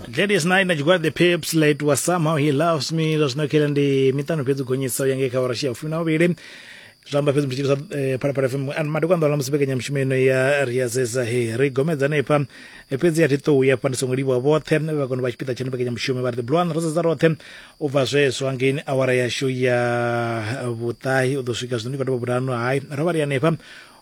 Gladys Knight na tshigwada the pips late was somehow he loves me zwa zwino khela ndi miṱanu fhedzi gonyisa u ya ngei kha vharashi ya fumi na vhuvhili zwa amba fhedzi mutshitshisa eh, phalaphala fm and madiko anḓola musi mbekanyamushumo ino ya ri ya zeza he ri gomedza hanefha Eh, fhedzi a thi ṱou ya fha ndi songo livhuwa vhoṱhe vha kone vha tshipiḓa tshene mbekanyamushumo vha ri the blue one ro sedza roṱhe u bva zwezwo hangeini awara yashu ya vhuṱahi u ḓo swika zwino ndi khou tovha vhurano hai ro vha ri hanefha